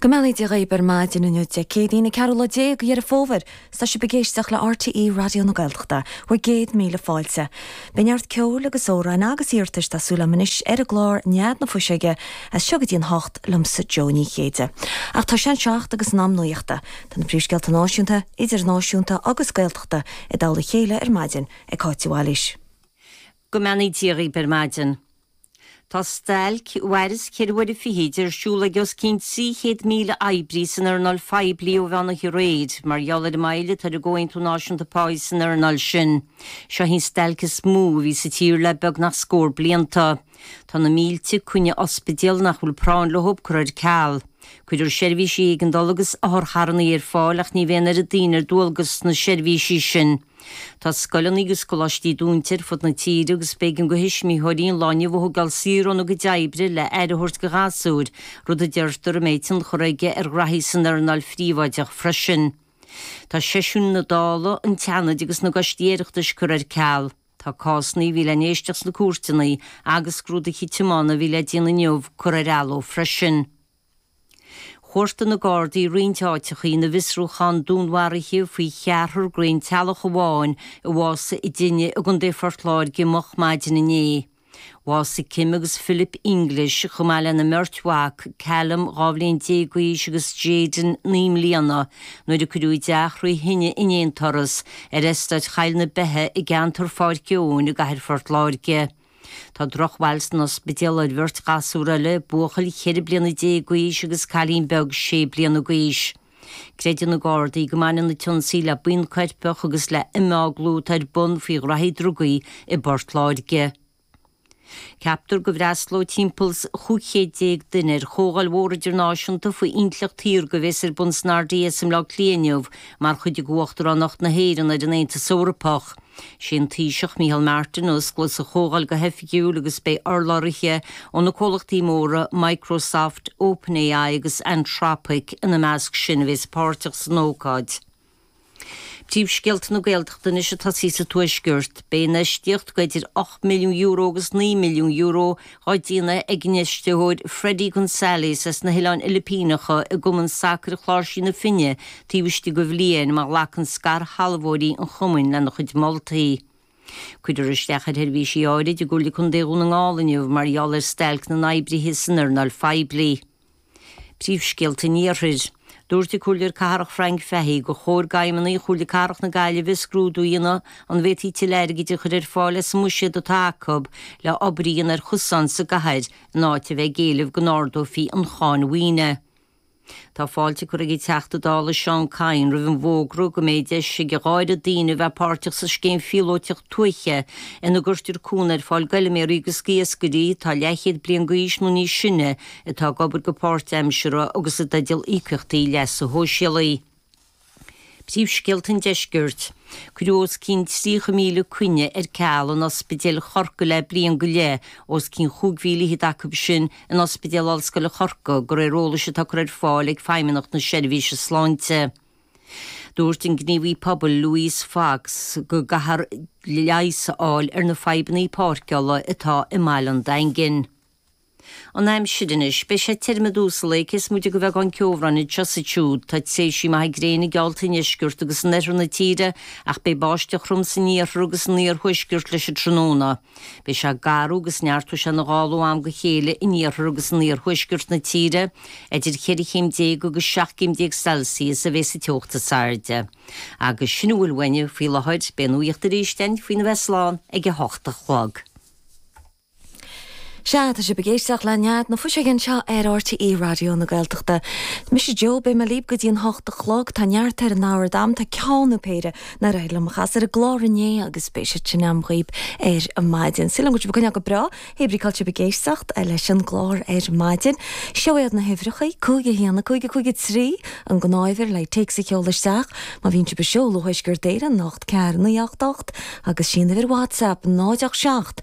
Go mbeannaí Dia dhaoib ar maidin inniu Dé Céadaoin an 14ú lá de Dheireadh Fómhair. Is tá sibh ag éisteacht le RTÉ Raidió na Gaeltachta. Bhur gcéad míle fáilte. Beidh neart ceoil agus amhráin agus iarratais tá súil agam anois ar an gclár Nead na Fuiseoige as seo go dtí an hocht liomsa Jó Ní Chéide. Ach tá sé an seacht agus in am nuachta. Tá na príomhscéalta náisiúnta, idirnáisiúnta agus Gaeltachta i dtoll a chéile ar maidin ag Cáit de Bhailís. Go mbeannaí Dia dhaoib ar maidin. Tá stailc a mhairfeas ceithre huaire fichead ar siúl ag os cionn 300,000 oibrí san earnáil phoiblí ó mheán oíche aréir mar gheall ar an moill atá ar an gcomhaontú náisiúnta páí san earnáil sin. Seo í an stailc is mó a bhí sa tír le beagnach scór blianta. Tá na mílte coinne ospidéil nach bhfuil práinn leo curtha ar ceal. Cuirfear seirbhísí éigeandála agus otharcharranna ar fáil ach ní bheidh an oiread daoine ar dualgas sna seirbhísí sin. Tá scoileanna agus coláistí dúnta ar fud na tíre agus b'éigean do thuismitheoirí an lá inniu a thogáil saor óna gcuid oibre le aire a thabhairt do ghasúir, rud a deirtear a mbeidh tionchar aige ar ghraithí san earnáil phríobháideach freisin. Tá seisiúin na Dála, an tSeanaid agus na gcoistí Oireachtais curtha ar ceal. Tá cásanna a bhí le n-éisteacht sna cúirteanna agus scrúdaithe tiomána a bhí le déanamh inniu curtha ar athló freisin. Chuartaigh na Gardaí roinnt áiteacha ina bhfiosrúchán dúnmharaithe faoi cheathrar den aon teaghlach amháin a bhásaigh i dtine i gContae Phort Láirge moch maidin inné. Bhásaigh Kim agus Philip English, chomh maith lena mbeirt mhac, Callum, dhá bhliain déag d'aois, agus Jayden, naoi mbliana, nuair a cuireadh a dteach thrí thine in aon turas, ar eastát Choill na Beithe i gceantar Pháirc Eoin i gcathair Phort Láirge. Tá drochbhail san ospidéal ar bheirt ghasúr eile, buachaill cheithre bliana déag d'aois agus cailín beag sé bliana d'aois. Creideann na Gardaí go mbaineann an t-ionsaí le buíon choirpeach agus le himeaglú atá ar bun faoi ghraithí drugaí i bPort Láirge. Ceaptar go bhfreastalóidh timpeall is 1,500 duine ar chomhdháil mhór idirnáisiúnta faoi intleacht shaorga a bhéas ar bun san RDS i mBleá Cliath inniu mar chuid de Uachtaránacht na hÉireann ar an Aontas Eorpach. Is é an Taoiseach, Micheál Martin, a osclós an chomhdháil go hoifigiúil agus beidh urlabhraithe ó na comhlachtaí móra Microsoft, OpenAI agus Anthropic ina measc sin a bheas páirteach san ócáid. Príomhscéalta na Gaeltachta anois ag tosaí sa Tuaisceart. Beidh infheistíocht de idir €8 milliún agus €9 milliún dá déanamh ag an infheisteoir Freddy Gonzalez as na hOileáin Fhilipíneacha i gCumann Sacair Chláirsigh na Finne taobh istigh de bhliain má ghlacann scairshealbhóirí an chumainn lena chuid moltaí. Cuirfear isteach ar sheirbhísí áirid i gComhairle Contae Dhún na nGall inniu mar gheall ar stailc na n-oibrithe san earnáil phoiblí. Príomhscéalta an Iarthair. Dúirt an Comhairleoir Cathrach Frank Fahy gur chóir d'fheidhmeannaigh Chomhairle Cathrach na Gaillimhe scrúdú a dhéanamh an bhféadfaí tuilleadh airgid a chur ar fáil as an mbuiséad atá acu le obair a dhéanamh ar chosáin sa gcathair in áit a bheith ag éileamh go n-ardófaí an cháin mhaoine. Tá fáilte curtha ag an Teachta Dála Seán Kyne roimh an bhfógra go mbeidh deis ag a dhá oiread daoine a bheith páirteach sa scéim phíolóiteach tuaithe ina gcuirtear cúnamh ar fáil d'fheilméaraí agus d'iascairí atá leathchéad bliain d'aois nó níos sine atá ag obair go páirtaimseartha agus i dteideal íocaíochtaí leasa shóisialaigh. Príomhscéalta an Deiscirt, Cuireadh os cionn 30,000 coinne ar ceal in ospidéil Chorcaí le bliain go leith, os cionn 25,000 acu sin in Ospidéal Ollscoile Chorcaí, de réir eolais atá curtha ar fáil ag Feidhmeannacht na Seirbhíse Sláinte. Dúirt an gníomhaí pobail Louise Fox go gcaithfear leigheas a fháil ar na fadhbannaí páirceála atá i mBaile an Daingin. An aimsir anois. Beidh sé tirim i dtús an lae, cé is móite de bheagán ceobhráin anseo is ansiúd. Tá tréimhsí maithe gréine geallta i ndeisceart agus in oirthear na tíre, ach beidh báisteach throm san iarthar agus san iarthuaisceart leis an tráthnóna. Beidh sé garbh agus neartóidh sé ina ghála ó am go chéile in iarthar agus in iarthuaisceart na tíre. Idir cheithre chéim déag agus seacht gcéim déag Celsius a bheidh sa teocht is airde, agus sin a bhfuil uainne faoi láthair. Beidh an nuacht arís ann faoina bheith slán ag a hocht a chlog. Sea, tá sibh ag éisteacht le Nead na Fuiseoige anseo ar RTÉ Raidió na Gaeltachta. Is mise Jo, beidh mé libh go dtí a hocht a chlog. Tá neart ar an ábhar agam, tá ceann nó péire nár éirigh liom a chasadh ar an gclár inné agus beidh siad sin agam dhaoib ar maidin. Súil agam go bhfuil sibh ag coinneáil go breá, hé brí cá bhfuil sibh ag éisteacht leis an gclár ar maidin. Seo iad na huimhreacha, cúig a haon, a cúig, a cúig a trí, an gnáthuimhir le téacs a sheoladh isteach má bhíonn sibh ag seoladh ó Thuaisceart Éireann, 8 4 9 8 8, agus is í an uimhir WhatsApp, 0 8 7